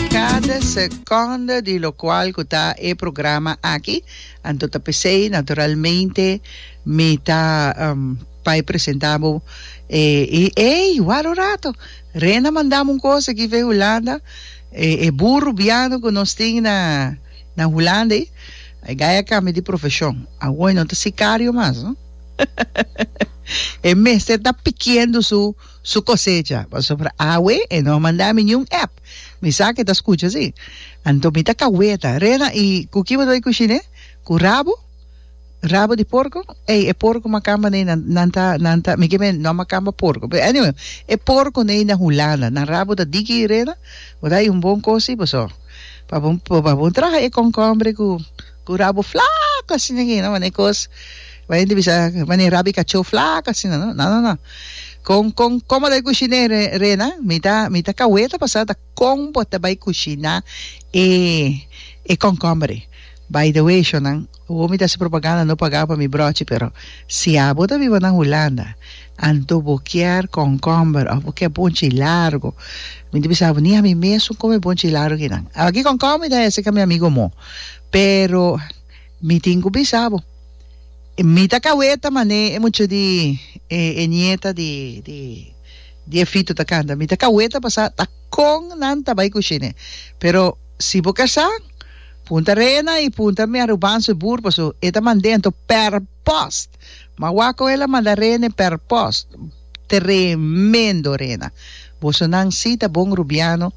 Cada seconda di locual cu ta e programa aki, anto ta pesey naturalmente mi ta bay presenta bo e y ey ward un rato Rena mandam un cosa aki vey Hulanda e burro biano cu nos tin na na Hulanda ey a gay a cambia di profesion awo e no ta sicario mas no e mester ta pikiendo su su cosecha, pasobra awe e no a manda mi niun app, mi sa ke ta scucha si, anto mi ta caweta, Rena, y cu kiba lo e cushi ne? Cu rabo? Rabo di porco? Ey, e porco macamba ne nan, nan ta, nan ta, mi ke me no a macamba porco, pero anyway, e porco ne na Hulanda, nan rabo ta diki, Rena? Bo ta hay un bon cos si boso, pa bo, pa bo traha e concombre cu. Cu rabo flaco asina aquí no mane cos bay hende bisa mane rabi cacho flaco asina no no no no con con como ta cushina e rena mi ta mi ta cawey ta pasa ta con bo ta bay cushina e e concombre by the way shonan awor mi ta hasi propaganda no paga pa mi brochi pero si abo ta biba na Hulanda Anto bo kier konkomber of bo kier bonchi largo. Mi ta bisa abo ni ami mes un kome bonchi largo kinan. Aba ki konkomber mi ta hese ka mi amigo mo. Pero mi tin ku bisa abo mi ta kaweta mane e mucha di e e nieta di di di Efito ta kanta. Mi ta kaweta pasa ta kon nan ta bai kushine. Pero si bo kasa punta Rena i punta mi Arubansu e bur paso e ta mande anto per post. Ma wako el a manda rene per post. Tremendo rena. Boso nan si ta bon Rubiano.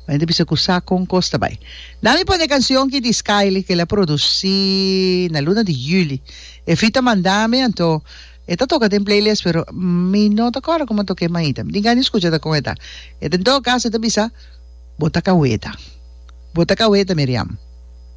M'a yenta bisa ku sa kon kos ta bai. Na mi pone kansion ki di Skyly ku el a produsí na luna di juli. E feat a manda mi anto e ta toka den playlist pero mi no ta kòrda komo a tok'é mainta. Mi tin gana di skucha ta kon e ta. E ta en todo kaso e ta bisa, Bo ta kaweta. Bo ta kaweta Miriam.